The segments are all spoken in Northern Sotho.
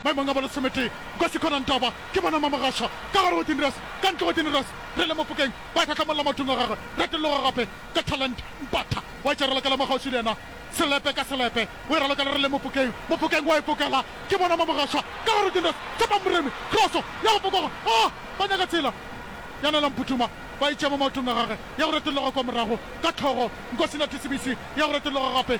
Maemong a bo lesometee, Nkosi Khona Ntaba, ke bona Mamogasha, ka gare go Tinirous, ka ntle go Tinirous, re le Mofokeng, ba hlahlamolola mathong a gagwe, re tologa gape, ka Talent, Mpatha, wa e tšerela ka la Makgauswi le yena, Selepe ka Selepe, o e ralokela re le Mofokeng, Mofokeng wa e fokela, ke bona Mamogasha, ka gare go Tinirous, Tshepang Moremi, Kroso, ya go fokoga, aa, ba nyaka tsela, ya Nela Mphuthuma, ba e tšea mo maotong a gagwe, ya go retologa kwa morago, ka Tlhogo, Nkosi Nathi Sebisi, ya go retologa gape,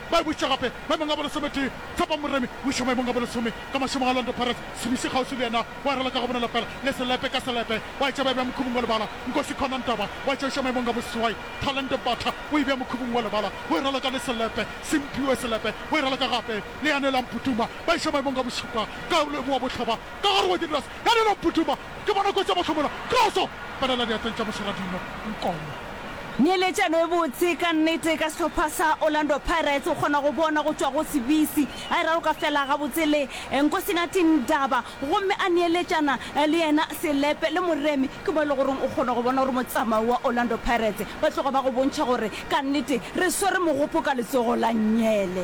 Ba e bošitše gape maemong a bolesometee. Tshepo Moremi o išwa maemong a bolesome ka mašemong a Orlando Pirates. Sebisi kgauswi le yena o arela ka go bonala fela le selepe ka selepe. Ba e tše ba e bea mokhubung wa lebala. Nkosi Khona Ntaba o a tšeišwa maemong a boseswai. Thalente Mbatha o e bea mokhubung wa lebala. O e raloka le selepe. Simphiwe Selepe o e raloka gape le Yanelang Putuma. Ba išwa maemong a bošupa. Kaulwe Boabohloba ka gare wa Dinras. Yanelang Putuma Ke bona kotsi ya mahlomola. Kroso! Palela diatleng tša Mošoradingwa, Nkomo. Neeletšano e botse ka nnete ka sehlopha sa Orlando Pirates o kgona go bona go tšwa go Sibisi a e raloka fela gabotse le Nkosinathi Ndaba gomme a neeletšana le yena selepe le Moremi ke mo e le goreng o kgona go bona gore motsamao wa Orlando Pirates ba tloga ba go bontšha gore ka nnete re swere mogopo ka letsogo la nyele.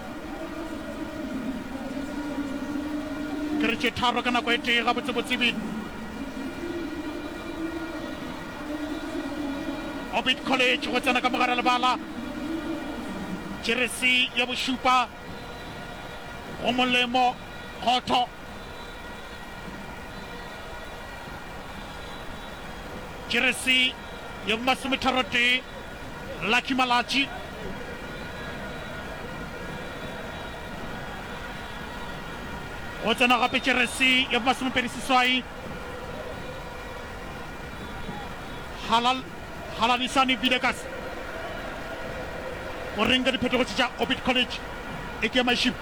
Ke re tše tharo ka nako e tee, gabotsebotse ebile. Orbit College go tsena ka mogare lebala jeresi ya bošupa go molemo khotho jeresi ya bomasometharotee Lucky Malatji go tsena gape jeresi ya bomasomepedi seswai Halal Halanisani Vilekas o reng ka diphetogo tše tša Orbit College e ke mašimo.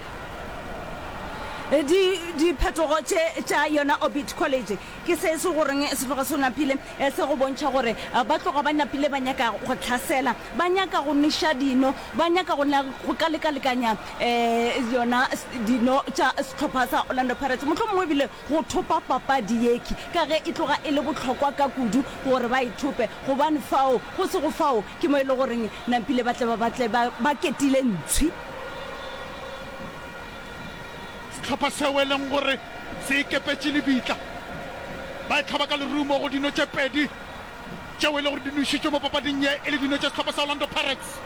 Di diphetogo tše tša yona Orbit College Ke se se goreng se tloga se napile se go bontšha gore ba tloga ba napile ba nyaka go hlasela, ba nyaka go neša dino, ba nyaka go na go ka lekalekanya yona dino tša sehlopha sa Orlando Pirates, mohlomongwe ebile go thopa papadi yekhi ka ge e tloga e le bohlokwa ka kudu gore ba e thope gobane fao go sego fao ke mo e le goreng napile ba tle ba batle ba ketile ntshwi. Sehlopha seo e leng gore se ikepetše lebitla ba e hlaba ka lerumo go dino tše pedi tšeo e le gore di nwešitšwe mo papading ye e le dino tša sehlopha sa Orlando Pirates.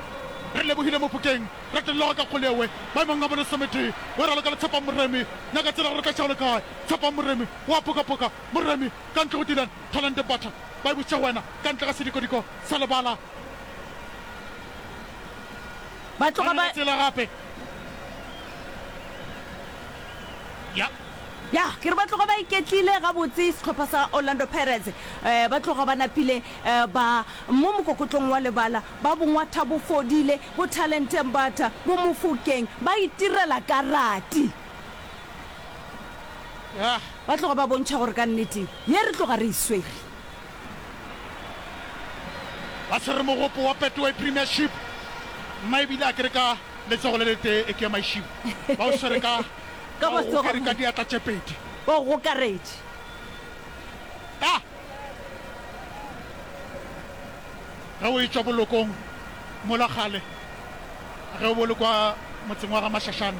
Re lebohile Mofokeng, Ratelloga ka Kgoleoe maemong a bolesometee o raloka le Tshepang Moremi. Nyaka tsela gore o tla šao le kae? Tshepang Moremi o a pokapoka. Moremi ka ntle go Dylan Thalente Butler ba e butše go wena ka ntle ga sedikodiko sa lebala. Ba tloga ba. ya ke re ba tloga ba iketlile gabotse sehlopha sa orlando pirates um ba tloga ba napile um ba mo mokokotlong wa lebala ba bongwatha bo fodile bo talenteng batha bo mofokeng ba itirela karati ba tloga ba bontšha gore ka nnete ye re tloga re e swere ba swere mogopo wa Betway Premiership. Mma ebile a ke re ka letsogo le letee e ke ya maišibo ba o swere ka Ka ba o matsogo a gokere ka mma. diatla tše pedi. Ba o gokaretše. Ka ge o etšwa bolokong mola kgale ge o bo le kwa motseng wa ga Mashashane.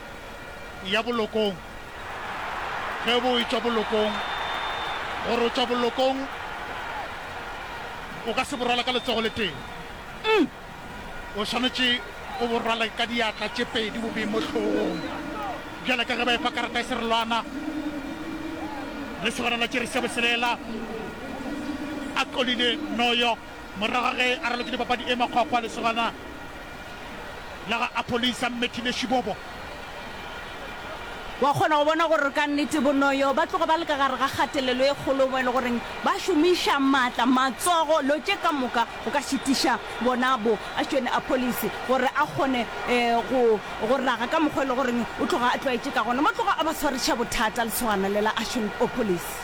ya bolokong, ge bo etšwa bolokong, gore o tšwa bolokong o ka se bo rwale ka letsogo le tee, o swanetše o bo rwale ka diatla tše pedi bo bee mo hlogong, bjale ka ge ba efa karata ya serelwana. Lesogana la tšere sebo se lela, a tlolile Noyo. Morago ga ge a ralokile papadi e makgwakgwa, lesogana la ga Apholisa, Mmethile Shibobo, Wa kgona go bona gore ka nnete Bonoyo ba tloga ba le ka gare ga kgatelelo e kgolo mo e le goreng ba šomiša maatla, matsogo, lo tše ka moka go ka šitiša bona bo Ashton Apholisi gore a kgone go go raga ka mokgwa e le goreng o tloga a tlwaetše ka gona. Mo tloga a ba tshwaretša bothata lesogana le la Ashton Opholisi.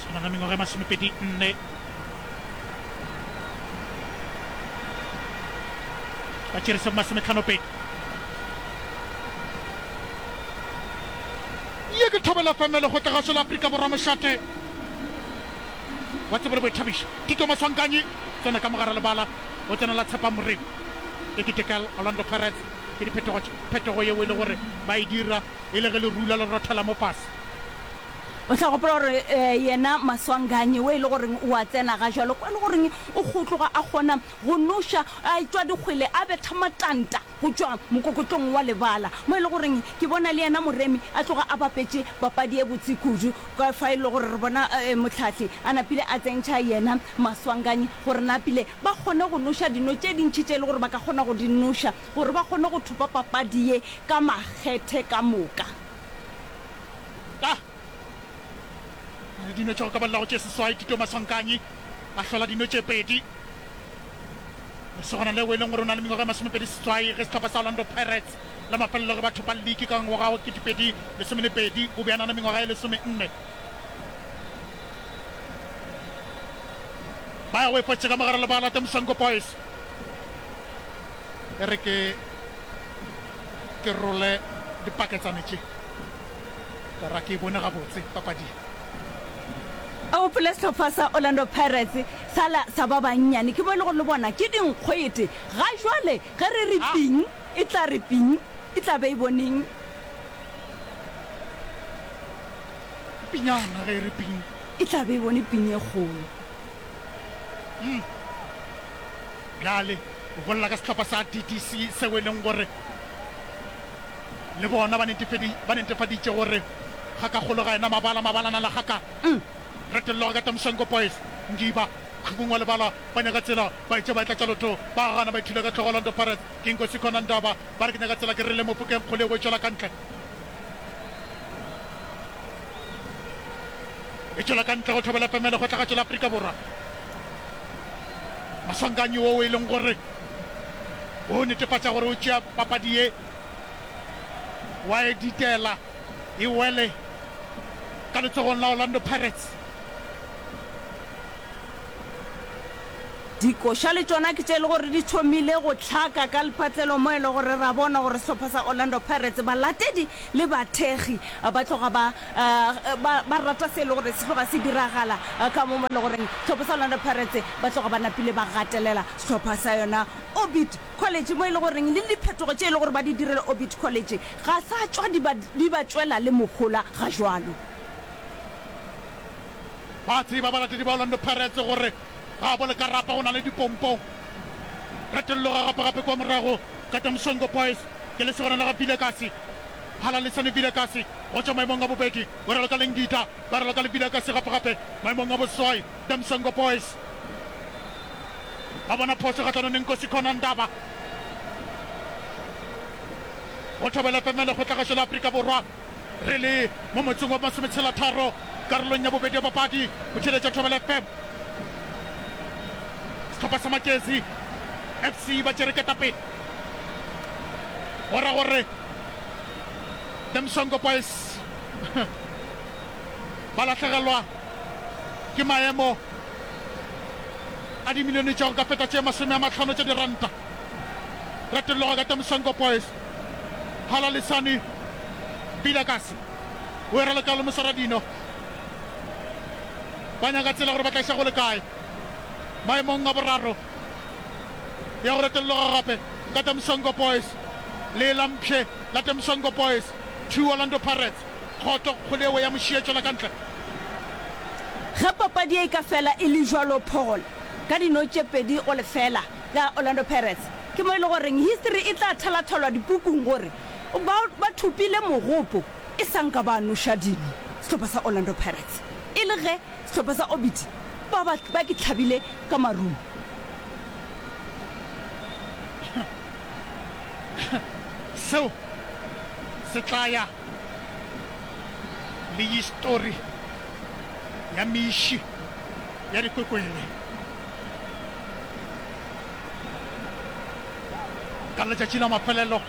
swana na mengwaga e masomepedi nne ba tšerise go masometlhanopedi ye ke thobela femele go tlegaso la aforika borwa mošate wa tsebo le boithabišo tito maswankanyi tsena ka mogare lebala o tsena la tshepa morimo e ketekel orlando pirates ke diphetogo phetogo yeo e le gore ba e dira E le ge lerula le rothela mo fase. O tla gopola gore yena Maswanganyi wo e le goreng o a tsena ga jalo kwa e le goreng o kgotloga a kgona go noša a tšwa dikgwele a betha matanta go tšwa mokokotlong wa lebala mo e le goreng ke bona le yena Moremi a tloga a bapetše papadi e botse kudu ka fa e le gore re bona Mohlahli a napile a tsentšha yena Maswanganyi gore napile ba kgone go noša dino tše dintši tše e le gore ba ka kgona go di noša gore ba kgone go thopa papadi ye ka makgethe ka moka. Ka re dino tša go ka balelago tše seswai, Tito Maswankanyi a hlola dino tše pedi. Lesogana leo e leng gore o na le mengwaga e masomepedi seswai ge sehlopha sa Orlando Pirates la mafelelo ge ba thopa liki ka ngwaga wa ketepedi lesome le pedi o be a na le mengwaga e lesomenne. Ba ya o efotše ka mogare le ba late Moswanko Boys. e re ke ke role dipaketsane tše ka ra ke e bone gabotse papading. A gopole sehlopha sa Orlando Pirates sala sa ba bannyane, ke bo e lego le bona ke dinkgwete. Ga jwale ge re re ping e tla re ping e tla be e boneng. Pinyana ge e re ping. E tla be e bone ping e kgolo. Bjale o bolela ka sehlopha sa DDC seo e leng gore le bona ba netefedi, ba netefaditše gore ga ka kgolo ga ena mabala, mabala na la ga ka. Retello ga ka Tamshenko Boys, Ngiba, Khubung wa Lebala, ba nyaka tsela, ba etše ba e tlatša lotho, ba a gana, ba ithula ka hlogo Orlando Pirates, ke nko Sikhona Ndaba, ba re ke nyaka tsela, ke re le Mofokeng kgole o e tšwela ka ntle. e tšwela ka ntle go tlhobela pemelo go tlagatšo la Afrika Borwa. Maswanganyi wo e leng gore o netefatša gore o tšea papadi ye wa e ditela e wele ka letsogong la Orlando Pirates. Dikoša le tšona ke tše e le gore di thomile go hlaka ka Lephatlelo mo e le gore ra bona gore sehlopha sa Orlando Pirates balatedi le bathekgi ba tloga ba ba ba rata se e le gore se tloga se diragala ka mo mo e le goreng sehlopha sa Orlando Pirates ba tloga ba napile ba gatelela sehlopha sa yona Orbit College mo e le goreng le diphetogo tše e le gore ba di direla Orbit College ga sa tšwa di ba di ba tšwela le mohola ga jwalo. Ba a tseba balatedi ba Orlando Pirates gore gaabo le ka rapa go na le dipompong. Retello ga rapa gape kwa morago ka teng Songo Boys ke lesogana la ga Vilakazi. Halalisani Vilakazi go tšwa maemong a bobedi o raloka le Ngida ba raloka le Vilakazi gape gape maemong a boswai teng Songo Boys. Ba bona phoso kgahlanong le Nkosi Khona Ndaba. Go thobela FM lekgotlagašo la Afrika Borwa. Re le mo motseng wa masometshela-tharo karolong ya bobedi ya papadi, o theeletša Thobela FM. Sehlopha sa Makezi FC ba tšere ketapele, go ra gore The Msongo Boys ba lahlegelwa ke maemo a dimilione tša go ka feta tše masome a mahlano tša diranta. Retello ka The Msongo Boys. Phala Lisani Vilakazi o era letlalo mosara dino ba nyaka tsela gore ba tla iša go le kae maemong a boraro ya go retelloga gape ka Temsongo Boys le la mpshe la Temsongo Boys two Orlando Pirates kgoto kgole ewe ya mošie tšwela ka ntle. Ge papadi ye e ka fela e le jwalo Paul ka dino tše pedi go lefela ya Orlando Pirates ke mo e le goreng history e tla thalathalwa dipukung gore ba ba thopile mogopo e sa nka ba noša dino sehlopha sa Orlando Pirates e le ge sehlopha sa Orbit ba ba ba ke tlhabile ka marumo. Seo se tla ya. le histori ya miši ya dikwekwele. Ka letšatši la mafelelo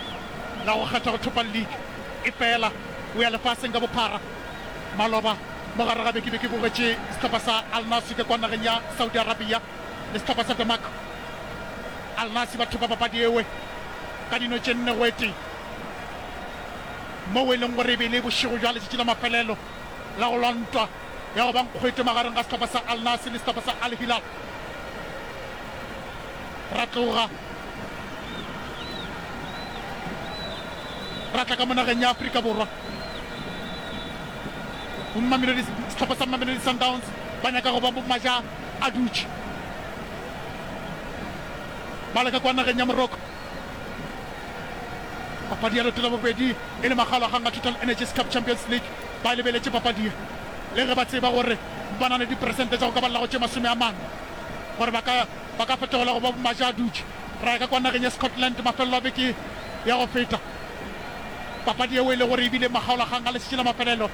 la go kgetha go thopa liki e fela o ya lefaseng ka bophara, maloba mo gare ga beke be ke bogetše sehlopha sa Al Nassr ka kwa nageng ya Saudi Arabia le sehlopha sa Demak. Al Nassr ba thopa papadi ewe ka dino tše nne go e tee. moo e leng gore e be e le bošego bja letšatši la mafelelo la go lwa ntwa ya go ba nkgwete magareng ga sehlopha sa Al Nassr le sehlopha sa Al Hilal. Ra tloga ra tla ka mo nageng ya Afrika Borwa go Mamelodi, sehlopha sa Mamelodi Sundowns ba nyaka go ba bo maja a dutše ba leka kwa nageng ya Morocco Papadi ya leoto la bobedi e le Magalaganga Total Energies Cup Champions League ba e lebeletše papadi ye le ge ba tseba gore ba na le diperesente tša go ka ba llago tše masome a mane gore ba ka ba ka fetogela go ba bomajaadutše. Ra ya ka kwa nageng ya Scotland mafelelo a beke ya go feta, papadi yeo e le gore e bile Magaolaganga letšatši la mafelelo.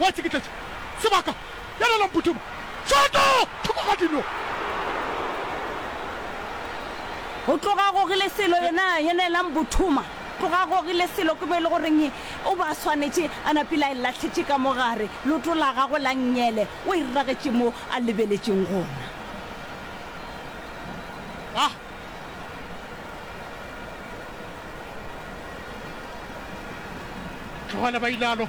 wa tšikitletša sebaka, Yalala Mputuma, Tšoto! Thoko ga dino! Go tloga Gogile Selo yena, Yanela Mbuthuma, Tloga Gogile Selo ke mo e le goreng o be a swanetše a napile a e lahletše ka mo gare, leoto la gagwe la nnyele o e ragetše mo a lebeletšeng gona. A. Tlogele ba ile a lo.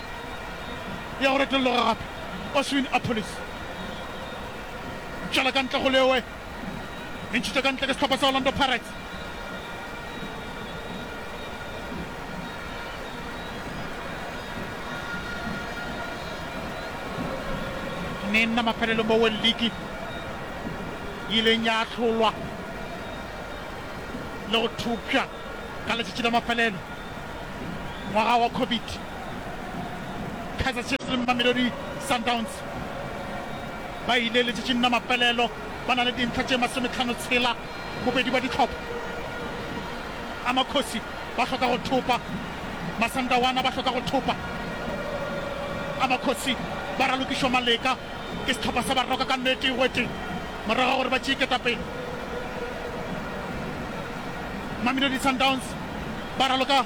ya go retologa gape, Oswin Appollis. Tšwela ka ntle go leoe e ntšhitšwe ka ntle ke sehlopha sa Orlando Pirates. ne nna mafelelo mo World League e ileng ya ahlolwa le go thopša Ka letšatši la mafelelo ngwaga wa Covid, Kaizer Chiefs le Mamelodi Sundowns ba ile letšatšing la mafelelo ba na le dintlha tše masometlhano tshela. Bobedi bwa dihlopha a Makhosi ba hloka go thopa, Masandawana ba hloka go thopa. A Makhosi ba ralokišwa maleka ke sehlopha sa Baroka ka nete e weteng. morago ga gore ba tšee ketapele. Mamelodi Sundowns ba raloka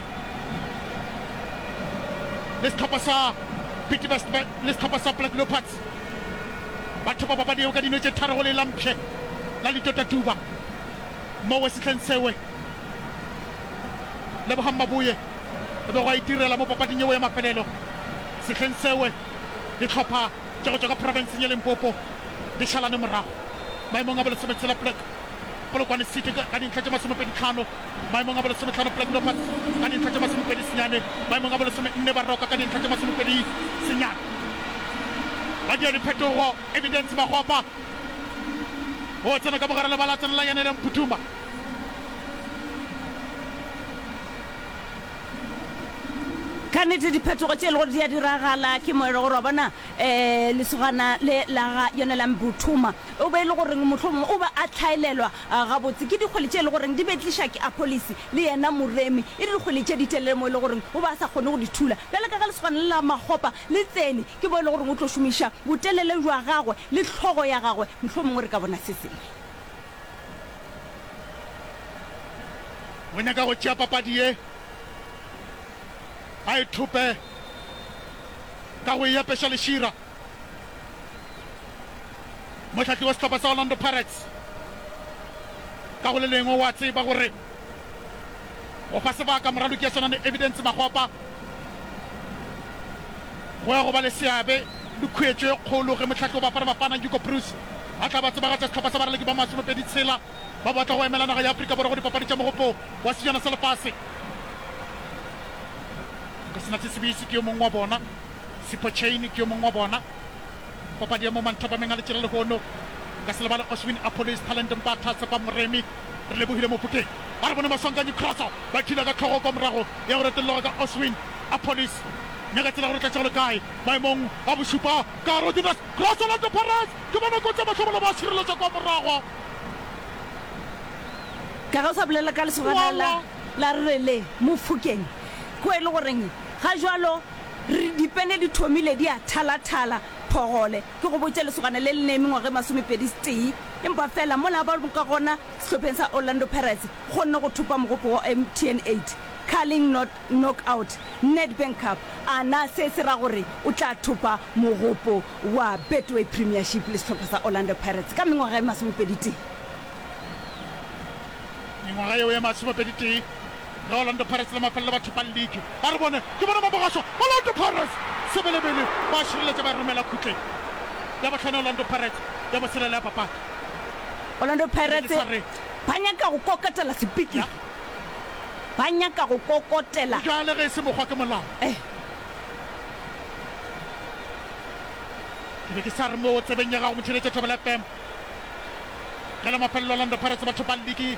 le sehlopha sa Bidvest le sehlopha sa Black Leopards. Ba thopa papadi eo ka dino tše tharo go le la mpshe la Litota Tuba. Mo Wesitleng Sewe, Lebogang Maboye go be go a itirela mo papading eo ya mafelelo. Sehleng Sewe, dihlopha. tša go tšwa ka profenseng ya Limpopo di šalane morago maemong a bolesometshela plek Polokwane City ka dintlha tše masomepedi tlhano, maemong a bolesometlhano plek Dopas ka dintlha tše masomepedi senyane, maemong a bolesomenne Baroka ka dintlha tše masomepedi senyane. Badiadiphetogo Evidence Makgopa o tsena ka mogare lebala a tsenela Yanele Mputhuma. Ka nnete, diphetogo tše e lego gore di a diragala ke mo e lego gore, wa bona, um lesogana le la ga Yonelang Buthuma, o be e le gore mohlomongwe o be a hlaelelwa gabotse ke dikgwele tše e lego gore di be tliša ke Apolise le yena Moremi, e le dikgwele tše ditelele mo e lego gore o be a sa kgone go di thula. Bjale ka ge lesogana le la Makgopa le tsene, ke mo e lego gore o tlo šomiša botelele bja gagwe le hlogo ya gagwe, mohlomongwe re ka bona se sengwe. O nyaka go tšea papadi ye, a e thope ka go e apeša lešira. Mohlahli wa sehlopha sa Orlando Pirates ka go le lengwe o a tseba gore Go fa sebaka moraloki ya swana le Evidence Makgopa go ya go ba le seabe le khuetšo e kgolo ge mohlahli wa Bafana Bafana Hugo Broos a tla ba tsebagatša sehlopha sa baraloki ba masomepedi tshela ba batla go emela naga ya Afrika Borwa go dipapadi tša mogopo wa sejana sa lefase. Go sena se Sibisi ke yo mongwe wa bona, Sipho Chaine ke yo mongwe wa bona. Papadi ya mo manthapameng a letšela lehono. Nka se lebale Oshwin Apollo, Isthalente Mbatha, Tshepa Moremi. Re lebogile Mofokeng a re bona Maswanganyi Crosso ba khila ka tlhogo kwa morago ya go retelelwa ka Oswin Appollis mme ka tsela ya gore tlatša go le kae maemong a bošupa ka Rodinus Crosso Orlando Pirates ke bona kotsi ya mahlomola ba šireletša kwa morago. Ka ge o sa bolela ka lesogana la la rre le Mofokeng ko e le goreng ga jwalo re dipene di thomile di a thala-thala phogole. Ke go botše, lesogana le le ne mengwaga e masomepedi-setee, empa feela mola ba ka gona sehlopheng sa Orlando Pirates, kgonne go thopa mogopo wa MTN 8 Carling Knockout Nedbank Cup, a na se se ra gore o tla thopa mogopo wa Betway Premiership le sehlopha sa Orlando Pirates ka mengwaga e masomepedi-tee? Mengwaga yeo e masomepedi-tee. Ge Orlando Pirates le mafelelo ba thopang league, a re bone ke bona ba bogaswa. Orlando Pirates sebelebele ba a šireletša ba e romela khutleng. Ya bohlano Orlando Pirates ya boselela ya papadi. Orlando Pirates ba nyaka go kokotela sepiti, ba nyaka go kokotela. Bjale ge e se mokgwa ke molao. Ke be ke sa re moo tsebeng ya gago Motšheletše Thobela FM. Ge la mafelelo Orlando Pirates ba thopang league.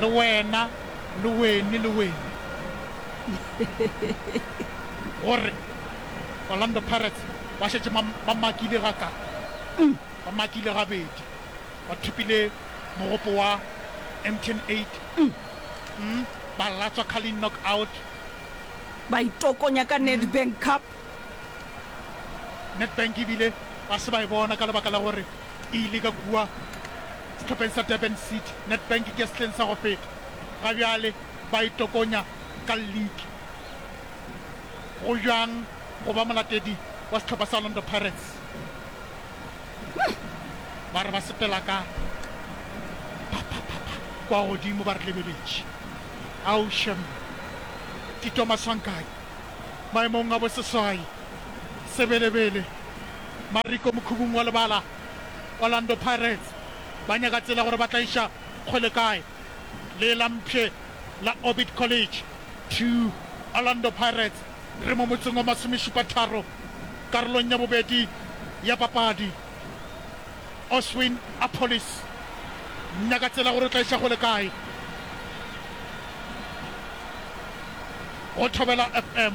Le wena, le wene, le wene. Gore Orlando Pirates ba šetše ba makile ga ka, ba makile gabedi, ba thopile mogopo wa Emten Eight, ba latswa Carling Knockout. Ba itokonya ka Nedbank Cup. Nedbank ebile ba se ba e bona ka lebaka la gore e ile ka kua. sehlopheng sa Durban City. Nedbank ke sehleng sa go feta ga bjale ba e tokonya ka lliki. Go bjang go ba molatedi wa sehlopha sa Orlando Pirates? Ba re ba sepela ka phaphapha kwa godimo ba re lebeletše. Ao shem! Tito Maswanganyi, maemong a boseswai, Sebelebele, Mariko mokhubung wa lebala. Orlando Pirates ba nyaka tsela gore ba tla iša kgole kae le la mpshe la Orbit College to Orlando Pirates re mo motseng wa masomešupatharo karolong ya bobedi ya papadi. Oswin Appollis nyaka tsela gore o tla iša kgole kae go Thobela FM.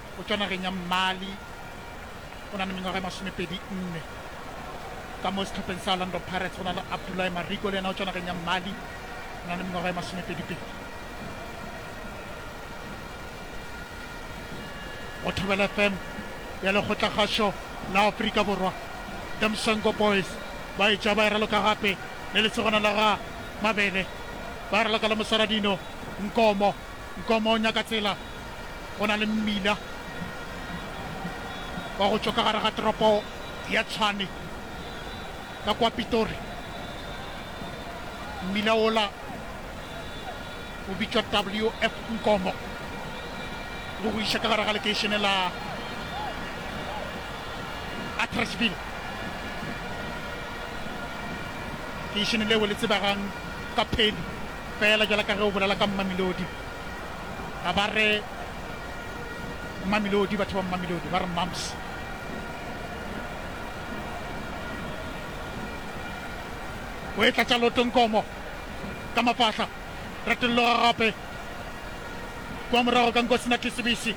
o tšwa nageng ya Mali, o na le mengwaga e masomepedi nne. Ka mo sehlopheng sa Orlando Pirates go na le Abdoulaye Mariko le yena o tšwa nageng ya Mali, o na le mengwaga e masomepedipedi. Go Thobela FM ya lekgotlakgašo la Afrika Borwa, The Msongo Boys ba etša ba e raloka gape le lesogana la ga Mabele, ba raloka le Mosaradino Nkomo. Nkomo o nyaka tsela, go na le mmila wa go tšwa ka gare ga toropo ya Tshwane ka kwa Pitori. Mmila wola o bitšwa WF Nkomo, o go iša ka gare ga lekeišene la Attersville, lekeišene leo le tsebegang ka Penny. Feela bjalo ka ge o bolela ka Mmamelodi, ga ba re Mmamelodi, batho ba Mmamelodi ba re Mmams. O e tlatša loto Nkomo ka mafahla, Ratollo Gagape kwa morago ka Nkosi Nathi Sebisi,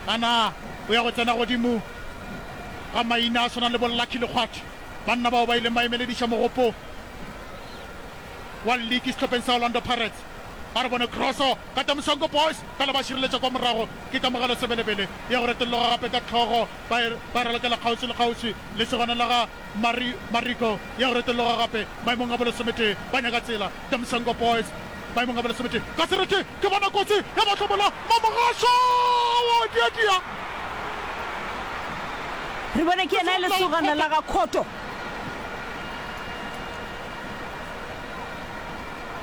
a na o ya go tsena godimo ga maina a swanang le bo Lucky Lekgwathi, banna bao ba ileng ba emelediša mogopo. wa liki sehlopheng sa Orlando Pirates a re bone kroso ka Tamusongo Boys fela ba šireletša kwa morago ke kamogelo sebelebele ya go retologa gape ka hlogo ba e ba e ralokela kgauswi le kgauswi le segwanela ga Mari Mariko ya go retologa gape maemong a bolesometee ba nyaka tsela Tamusongo Boys maemong a bolesometee ka sereti ke bona kotsi ya ba hlomola Mamogasho wa diadia Re bone ke yena e lesogana la ga Khoto.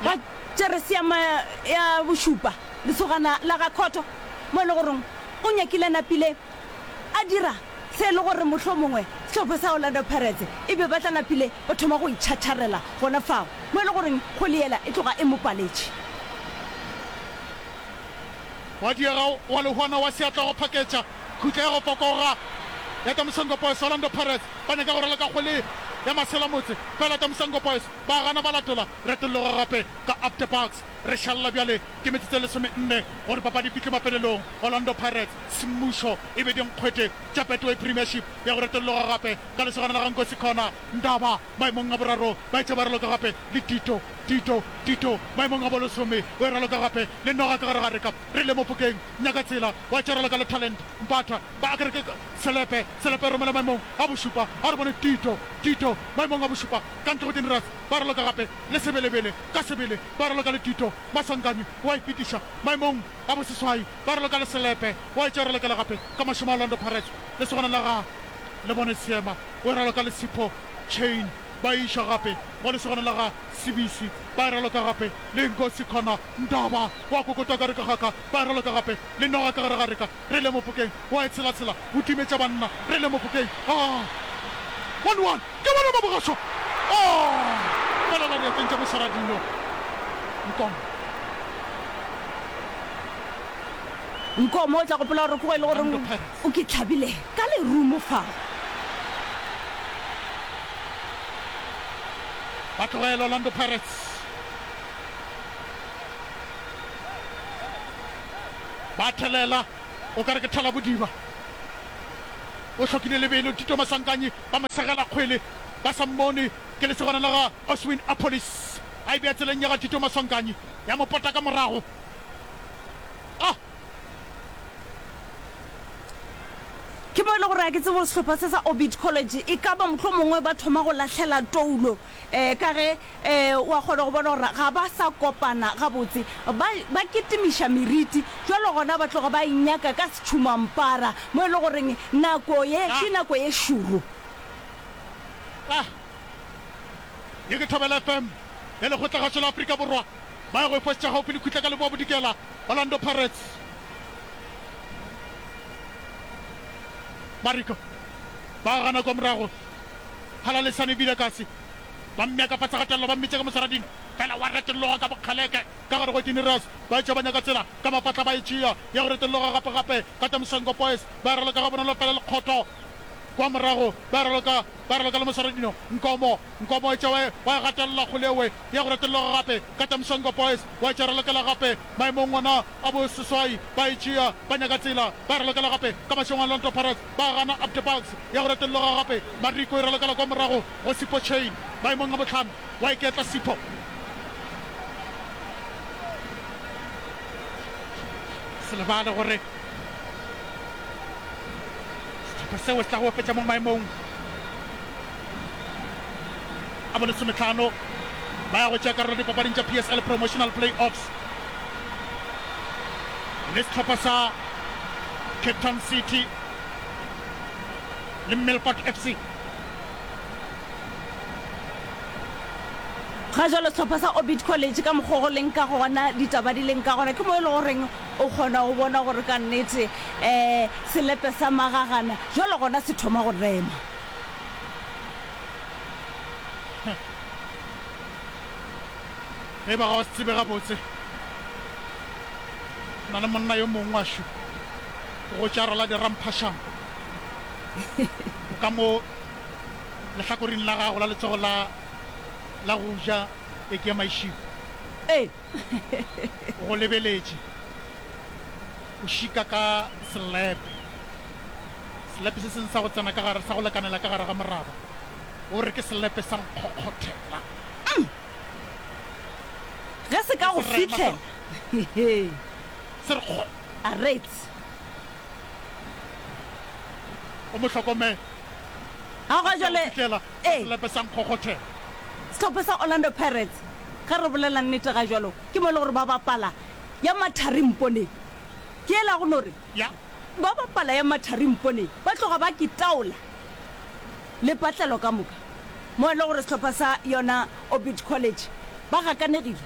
ga Tšereseama ya Bošupa, lesogana la ga Khotho, mo e le goreng o nyakile a napile a dira se e le gore mohlomongwe sehlopha sa Orlando Pirates e be ba tla napile ba thoma go itšhatšharela gona fao, mo e le goreng kgoli yela e tloga e mo paletše. Wa diega wa lehwana wa seatla wa phaketša Khutlego Kokoga ya Tamusango Boys, Orlando Pirates ba nyaka go raloka kgwele ya maselamotse fela Tamusango Boys ba gana ba latola retolloga gape ka Up The Bucks. Re šalela bjale ke metsotso e lesomenne gore papadi e fihle mafelelong, Orlando Pirates semmušo e be dinkgwete tša Betway Premiership ya go retolloga gape ka lesogana la ga Nkosi Connor Ndaba maemong a boraro ba etše ba raloka gape le Tito Tito Tito maemong a bolesome o e raloka gape le noga ka gare ga reka re le Mofokeng Nyakatsela wa Tšeroleka le Talent Mpatha ba akere ke Selepe, Selepe romela maemong a bošupa a re bone Tito, Tito maemong a bošupa ka ntle go Generous ba raloka gape le Sebelebele ka sebele ba raloka le Tito Maswanganyi wa ipitiša maemong a boseswai ba raloka le Selepe wa e Tšerolekela gape ka mašemo Orlando Pirates lesogana la ga Lebone Seema o e raloka le Sipho Chain ba e iša gape go lesogana la ga Sibisi ba e raloka gape le Nkosi Connor Ntaba wa kokota ka re ka ga ka, ba raloka gape le noga ka gare ga reka, re le mopokeng wa e tshela tshela, o timetša banna, re le mopokeng aa. One one, ke bona ba bogašo aa, fela la diatleng tša mosara dino Nkomo. Nkomo o tla gopola gore ke go e le goreng o ke tlhabile ka lerumo fao. Ba tlogela Orlando Pirates Ba thelela o ka re ke thalabodiba. O hlokile lebelo, Tito Masankanyi ba mo segela kgwele ba sa mmone. Ke lesogana la ga Oswin Appollis a e bea tseleng ya ga Tito Masankanyi, ya mo pota ka morago. Ah! Ke mo e le gore ga ke tsebe gore sehlopha se sa Orbit College e ka ba mohlomongwe ba thoma go lahlela toulo Ee, ka ge, ee, o a kgona go bona gore ga ba sa kopana gabotse. Ba, ba kitimiša meriti, bjalo gona ba tloga ba e nyaka ka setšhumampara, mo e le goreng nako ye ke nako ye šoro. A Ye ke Thobela FM ya Lekgotlakgašo la Afrika Borwa. Ba ya go e fošetša gaufi le Khutla ka Leboa Bodikela, Orlando Pirates. Mariko ba gana kwa morago. Phala le sane bile kasi. Ba mmea ka fase ga tello, ba mmitše ka mosaradini. Fela wa retologa ka bokgaleke, ka gare go Ekinirus. Ba etšwa ba nyaka tsela ka mafahla ba e tšea, ya go retologa gape-gape ka tša Mshengo Boys. Ba e raloka gabonolo fela lekgotho kwa morago. Ba e raloka, ba e raloka le mosaradino. Nkomo, Nkomo etšwa wa e, wa e gatelela kgole ewe, ya go retologa gape ka tša Mshengo Boys. Wa etšwa e ralokela gape maemong ona. Ba bo seswai ba e tšea, ba nyaka tsela, ba e ralokela gape ka mašeng a Llanto Pirates, ba gana Abde Bugs ya go retelloga gape, Mariko e ralokela kwa morago go Sipho Chain maemong a bohlano, wa iketla Sipho. Se lebale gore sehlopha seo se tla go opetša mo maemong. a bo lesometlhano ba ya go tšea karolo dipapading tša PSL Promotional Play-offs le setlhopha sa Cape Town City le Melkot FC. ga jalo setlhopha sa orbit college ka mokgwa go leng ka gona ditaba di leng ka gona ke mo e le goreng o kgona go bona gore ka nnete um selepe sa magagana jalo gona se thoma go rema ge ba ga o se tsebe gabotse na le monna yo mongwe wa šo go tša rala diramphašang o ka mo lehlakoring la gago la letsogo la la go ja e ke ya maišiko ee O go lebeletše o šika ka selepe, selepe se sengwe sa go tsena ka gare, sa go lekanela ka gare ga moraba. O re ke selepe sa nkgokgothela. Ge se ka go Serema sa- fihlela. Se re kgo, Arets. o mo hlokomele. Ga gwa Sa go jale. fihlela. Ee. Selepe sa nkgokgothela. Sehlopha sa Orlando Pirates, ge re bolela nnete ga jwalo, ke mo e le gore ba bapala ya mathari mponeng. Ke ela go no re, Ya. ba bapala ya mathari mponeng, ba tloga ba kitaola lepatlelo ka moka. Mo e le gore sehlopha sa yona Orbit College ba gakanegile,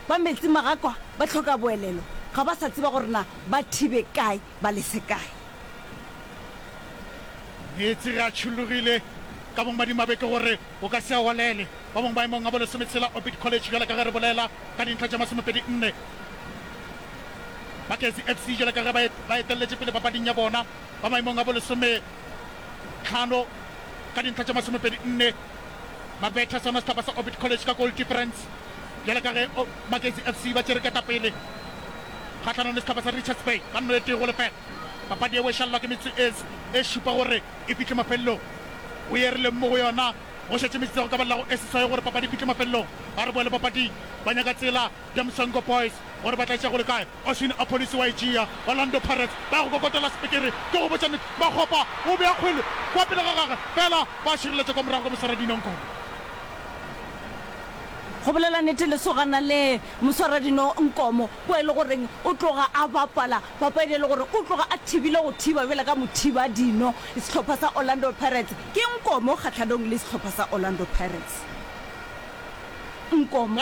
ba metsi magakwa, ba hloka boelelo, ga ba sa tseba gore na ba thibe kae. ba le sekae. Meetse ge a tšhollogile ka bomadimabe ke gore o ka se a walele. Ba bangwe maemong a bolesometshela Orbit College bjalo ka ge re bolela ka dintlha tša masomepedi nne. Baketsi FC bjalo ka ge ba ba etelletše pele papading ya bona ba maemong a bolesometlhano ka dintlha tša masomepedi nne. Mabetha sona sehlapa sa Orbit College ka goal difference. Bjale ka ge Magesi FC ba tšere ketapele kgahlanong le sehlopha sa Richards Bay ka nno e tee go lefela, papadi ye boešalelwa ke metsoets e šupa gore e fihle mafelelong. Go ye re leng mo go yona go šetše metsotso ya go ka ba llago e seswai gore papadi e fihle mafelelong. Ba re boele papading ba nyaka tsela Diamsongo Boys gore ba tla e tšea go le kae. Oswin Apolisi wa Ejea, Orlando Pirates, ba ya go kokotela sepikiri ke go botša nnete. Makgopa o bea kgwele kwa pele ga gagwe fela ba šireletša kwa morago ka moswara dino Nkomo. Go bolela nnete lesogana le, moswara dino Nkomo, kwa e le goreng o tloga a bapala papadi e le gore o tloga a thibile go thiba bjale ka mothiba dino. Sehlopha sa Orlando Pirates ke Nkomo kgahlanong le sehlopha sa Orlando Pirates. Nkomo.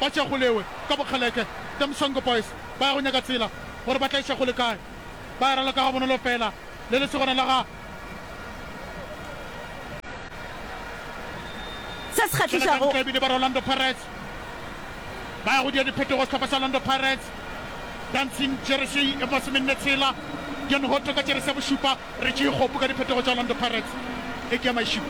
Ba tšea go lewe ka bokgaleke. Them Songo Boys ba ya go nyaka tsela gore ba tla iša go le kae. Ba ya ralo ka gabonolo fela le lesogana la ga. Se se kgahlišago. Tlelakantlaebile ba re Orlando Pirates ba ya go dia diphetogo sehlopha sa Orlando Pirates. Dancing jersey e mosomenne tshela. Dion Hotto ka jeresi ya bošupa. Re tšee kgopo ka diphetogo tša Orlando Pirates ge ke ya mašilo.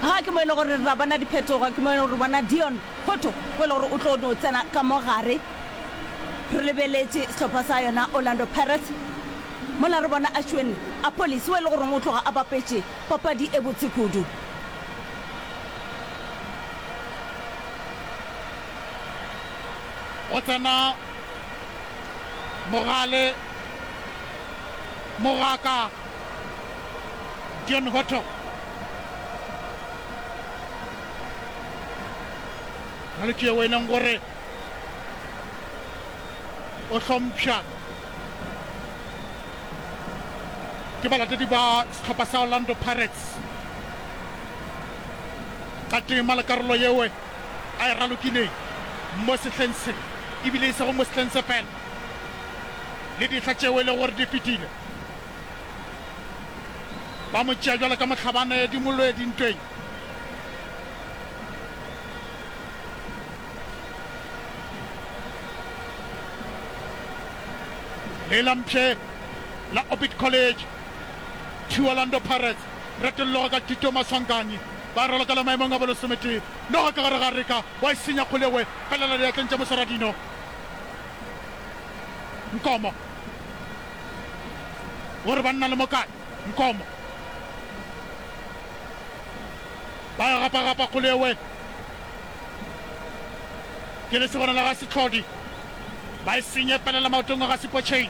Ga ke mo e le gore ra bona diphetogo, ke mo e le gore re bona Deon Hotto o e le gore o tlo no tsena ka mo gare. Re lebeletše sehlopha sa yona Orlando Pirates, mola re bona Ashwin Appollis o e le goreng o tloga a bapetše papadi e botse kudu. Go tsena. Mogale, Mogaka, John Hotto. Malwetši yeo e leng gore o hlompšha ke balatedi ba sehlopha sa Orlando Pirates ka tema le karolo yewe. a e ralokileng mo sehleng se, e bile e sego mo sehleng se feela, le dihla tšeo e lego gore di fetile, ba mo tšea bjalo ka mohlabane di mo lwe dintweng. Le la mpshe la Orbit College, Two Orlando Pirates, retolloga ka Tito Maswanganyi. Ba ralokela maemong a bolosometee. Noga ka gare ga reka, wa e senya kgole we felela diatleng tša mosaradino. Nkomo. Gore ba nna le mo kae? Nkomo. Ba e gapagapa kgole we. Ke lesibana la ga Setlhodi. Ba e senye felela maotong a ga Sepotšheng.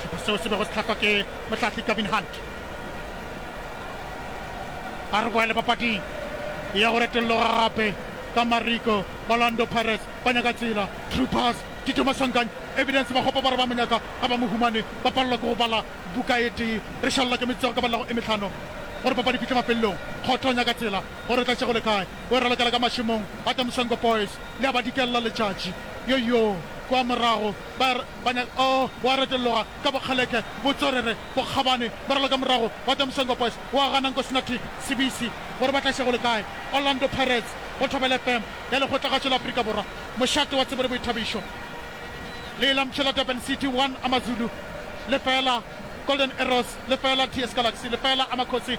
Sehlopha seo se bego se hlahlwa ke mohlahli Gavin Hunt. A re boele papading ya go retolloga gape ka mariko Orlando Pirates ba nyaka tsela Troopers Tito Masankanyi Evidence Makgopa ba re ba mo nyaka ga ba mo humane ba palelwa ke go bala buka e tee re šalela ke metsotso ka balelago e mehlano gore papadi fihle mafelelong Kgotho o nyaka tsela gore o tla šegole kae O e ralokela ka mašemong a the Mswengwe Boys le a ba dikella letšatši. Yoyoo! Kwa morago ba re ba nya oh! O a retologa ka bokgaleke, botswerere, bokgabane, ba raloka morago wa the Mswengwe Boys o a gana Nkosinatic Sibisi gore ba tla iša go le kae. Orlando Pirates go Thobela FM ya Lekgotlagatšo la Afrika Borwa. Mošate wa tsebo le boithabišo. Leilampše la Durban City one Amazulu lefeela Golden Arrows lefeela TS Galaxy lefeela Amakhosi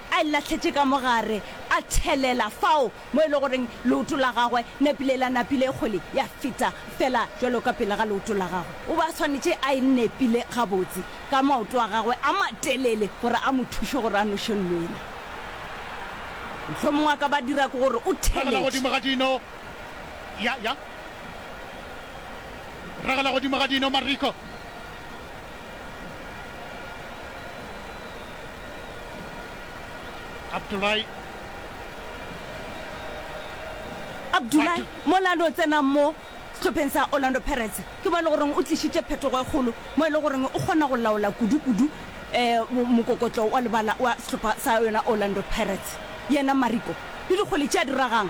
a e lahletše ka mo gare, a thelela fao mo e lego goreng leoto la gagwe napile la napile e kgole ya feta fela bjalo ka pele ga leoto la gagwe. O be a swanetše a e nepile gabotse ka maoto a gagwe a matelele gore a mo thuše gore a noše lwena. Mohlomongwe a ka ba dira ke gore o Ragela godimo theletše. ga dino. Ya, ya. Ragela godimo ga dino, Mariko. Abdulai. Abdulai, mola a no tsena mo sehlopheng sa Orlando Pirates, ke mo e le goreng o tlišitše phetogo e kgolo mo e le goreng o kgona go laola kudu-kudu mokokotlo wa lebala wa sehlopha sa yona Orlando Pirates. Yena Mariko le dikgole tše a di ragang.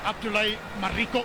Abdulai Mariko.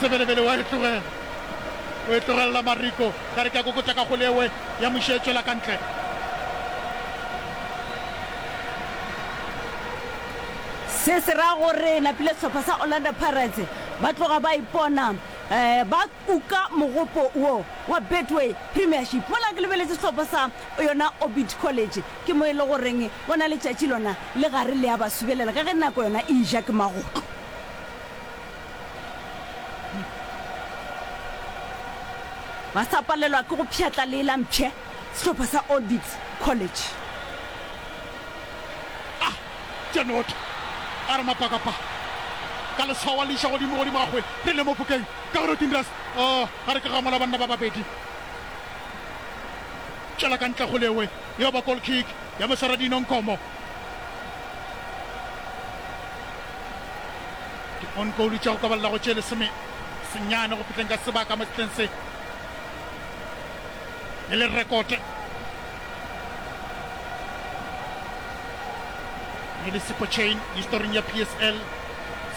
Sebelebele wa e tlogela, o e tlogelela Mariko, ka re ke a kokotša ka kgole ewe ya Moše e tšwela ka ntle. Se se ra gore napile sehlopha sa Orlando Pirates ba tloga ba ipona um ba U ka mogopo wo wa Betway Premiership mola ke lebeletse sehlopha sa yona Orbit College. Ke mo e le goreng bona letšatši lona le gare le a ba subelela ka ge nako yona e eja ke magotlo. Ba sa palelwa ke go pšhatla le la mpshe sehlopha sa Orbit College. A tša noto, a re mapakapa ka leswao a le iša godimo, godimo ga kgwele, re le mo phokeng. Ka gore o Tindras, oh, ga re ke ga mola banna ba babedi. Tšwela ka ntle Golewe, yeo ba goal kick ya Moswaradino Nkomo. Di on goal tša go ka balela go tše lesome senyane go fitleng ka sebaka mo setleng se e le rekote e le sepo chain historing ya psl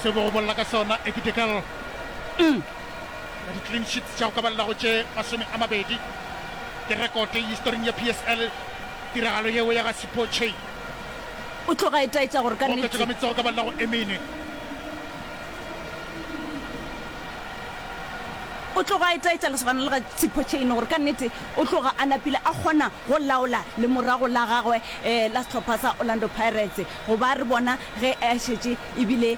se bo go bolela ka sona ekitekal ya di-clean sheets tša go ka balela go tše masome a mabedi ke rekote historing ya PSL. Tiragalo yeo ya ga Sipho Chaine O tloga a itaetša gore ka o oketšwe ka nnete. metso go ka balela go e mene. O tloga a itaetša lesogana le ga Sipho Chaine gore ka nnete o tloga a napile a kgona go laola lemorago la gagwe um la sehlopha sa Orlando Pirates goba re bona ge a šetše ebile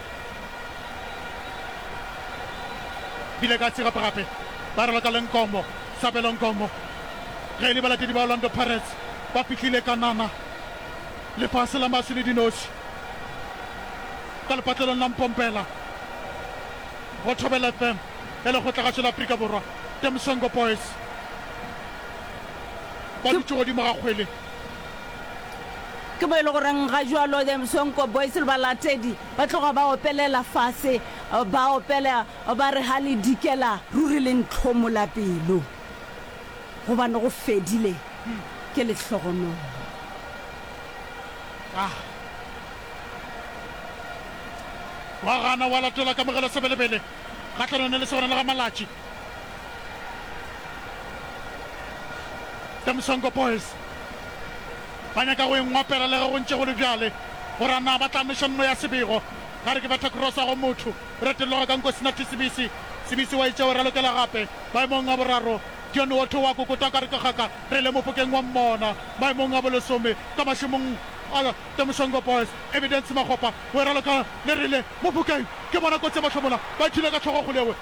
bile ka se gape-gape ba raloka le Nkomo, Sabelo Nkomo, ge e le balatedi ba Orlando Pirates ba pitlile ka nama lefase la maswi le dinoši ka lepatlelong la Mpompela go Thobela FM ya lekgotlagašo la Afrika Borwa, The Msongo Boys ba dutše godimo ga kgwele. Ke mo e le goreng ga jwalo The Msonko Boys le balatedi ba tloga ba opelela fase, ba opela ba re ha le dikela ruri le ntlhomola pelo gobane go fedile ke lehlogonolo. A wa gana wa latola kamogelo sebelebele kgahlanong le lesogana la ga Malatši. The Msongo Boys ba nyaka go e ngwapela le ge go ntše go le bjale gore a na ba tla neša nno ya Sebego. Ga re ke betha krosa go motho, e retelloga ka nko sena Thisibisi. Sibisi wa e tšeo ralokela gape maemong a boraro. Dion Wotho wa kokota ka re ke kgaka re le mopokeng wa mmona. Maemong a bolesome ka mašemong a The Msongo Boys, Evidence Makgopa o e raloka le rile mopokeng ke bona kotsi ya mahlomola ba ithula ka tlhogo kgolewe.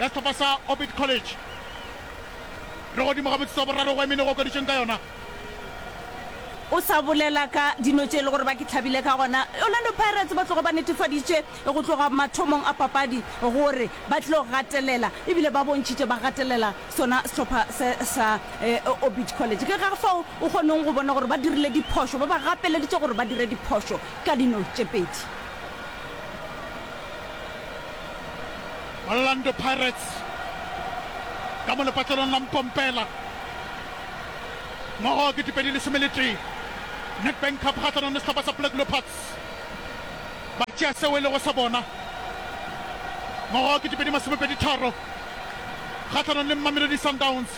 ya sehlopha sa Orbit College. Re godimo ga motsotso wa boraro go Emene go okaditšweng ka yona. O sa bolela ka dino tše e le gore ba ke hlabile ka gona. Orlando Pirates ba tlogo ba netefaditše go tloga mathomong a papadi gore ba tlilo gatelela ebile ba bontšhitše ba gatelela sona sehlopha se sa Orbit College. Ke ka fao o kgoneng go bona gore ba dirile diphošo, ba ba gapeleditše gore ba dire diphošo ka dino tše pedi. Orlando Pirates ka mo lepatlelong la Mpompela. Ngogo ke dipedi lesome le tee. Nedbank Cup kgahlanong le sehlopha sa Black Leopards. Ba tšea seo e lego sa bona. Ngogo ke dipedi masomepedi tharo kgahlanong le Mamelodi Sundowns.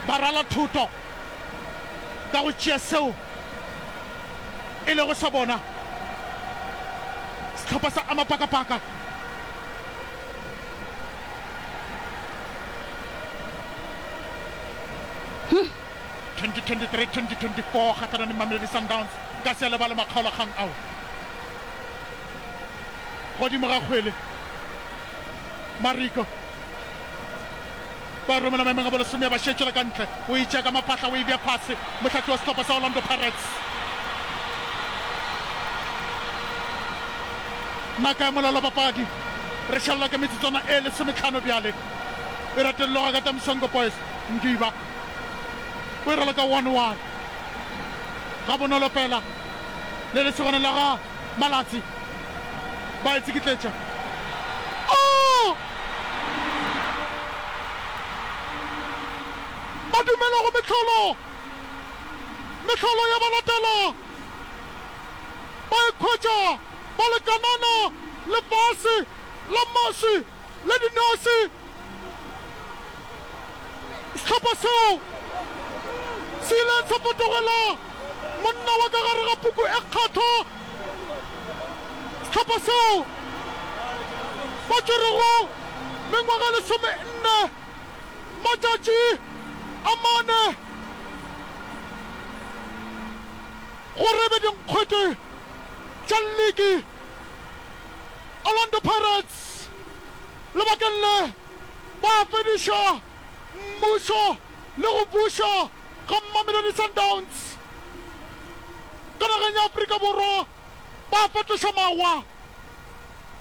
Ba rala thoto. ka go tšea seo e lego sa bona, sehlopha sa Amapakapaka Huh? 2023-2024 kgatlhanong le Mamelodi Sundowns ka se lebale makgaolakgang ao godimo ga kgwele mariko ba romela maemong a bolesome ya bašetšela ka ntle, o e tšea ka mapatla o e bea fase, mohlahli wa sehlopha sa Orlando Pirates. Naka ya molelo wa papadi, re šalela ka metsotswana e lesometlhano bjale, e ratelelwa ga Katam Songo Boys. Ngiba o e raloka one one, gabonolo fela le lesogana la ga. Malatsi ba e tsikitletša. Oo! Ba dumela go mehlolo, mehlolo ya ba latela. Ba ikhwetša ba le kanana lefase la maswi. le dinose. Sehlopha seo se ile sa fetogela monna wa ka gare ga puku e kgethwa. Sehlopha seo ba tšwerego mengwaga e lesomenne, matšatši a mane gore e be dinkgwete tša liki. Orlando Pirates lebakeng le ba fediša mmušo le go buša ga Mamelodi Sundowns ka nageng ya Afrika Borwa ba fetoša mawa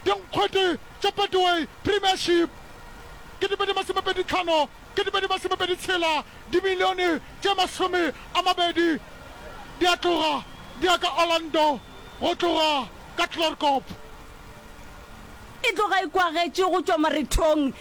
dinkgwete tša Betway Premiership ke dipedi masomepedi tlhano ke dibedi masomepedi tshela, dimilione tše masome a mabedi di a tloga di ya ka Orlando go tloga ka Klerkop. E tloga e kwagetše go tšwa marethong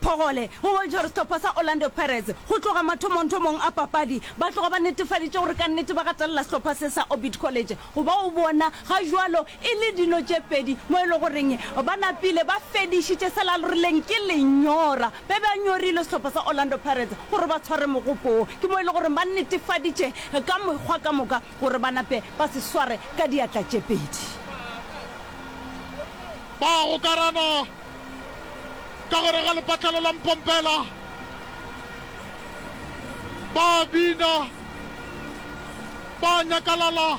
phogole go boitshwarestopha sa Orlando Pirates. Go tloga mathomongthomong a papadi, ba tloga ba netefaditše gore kannete ba gatelela sehlopha se sa Orbit College, goba o bona ga jwalo E le dilo tše pedi mo e le goreng ba napile ba fedišitše se lalorileng ke lenyora be ba nyorile sehlopha sa Orlando Pirates gore ba tshware mogopo wo, ke mo e le goreng ba netefaditše ka mekgwa ka moka gore ba nape ba se sware ka diatla tše pedi. Ba a gokarana ka gare ga lepatlelo la Mpompela, ba a bina, ba a nyakalala.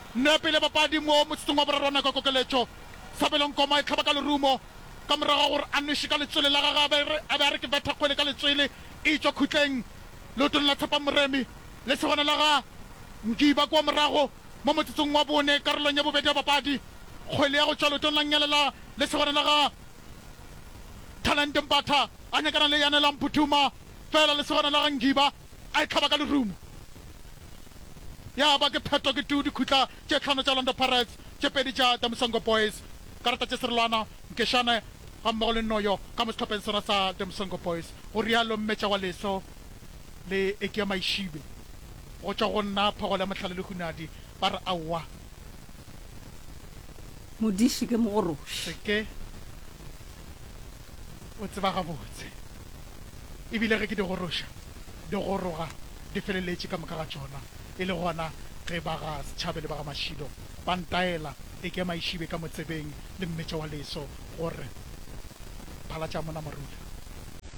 Nepi le bapadi mo motsotsong wa boraro wa nako ya kokeletšo. Sabelo Nkoma e hlaba ka lerumo ka morago ga gore a nweše ka letswele la gagwe a be a be a re ke betha kgwele ka letswele e e tšwa khutleng leotong la Tshepang Moremi. Le segona la ga Ngiba kua morago mo motsotsong wa bone karolong ya bobedi ya papadi. Kgwele ya go tšwa leotong la Nyelela le segona la ga Thalente Mpatha a nyakana le Yanelang Phuthuma fela le segona la ga Ngiba. a e hlaba ka lerumo. Ya ba ke phetho ke tu dikhutla tše hlano tša Orlando Pirates, tše pedi tša The Msongo Boys, karata tše serolwana, nkešane gammogo le nnoyo ka mo sehlopheng sona sa The Msongo Boys, go realo Mmetša wa Leso le Ekia Maishibe. Go tšwa go nna, Phogolo ya Mohlale le Hunadi ba re aowa. Modiši ke mogoroši. Se ke. o tseba gabotse. E bile ge ke di goroša, di goroga di feleletše ka moka ga tšona, e le gona ge ba ga Setšhabe le ba ga Mashilo ba ntaela e ke Maišibe ka motsebeng le Mmetša wa leso gore, Phalatša mona morula.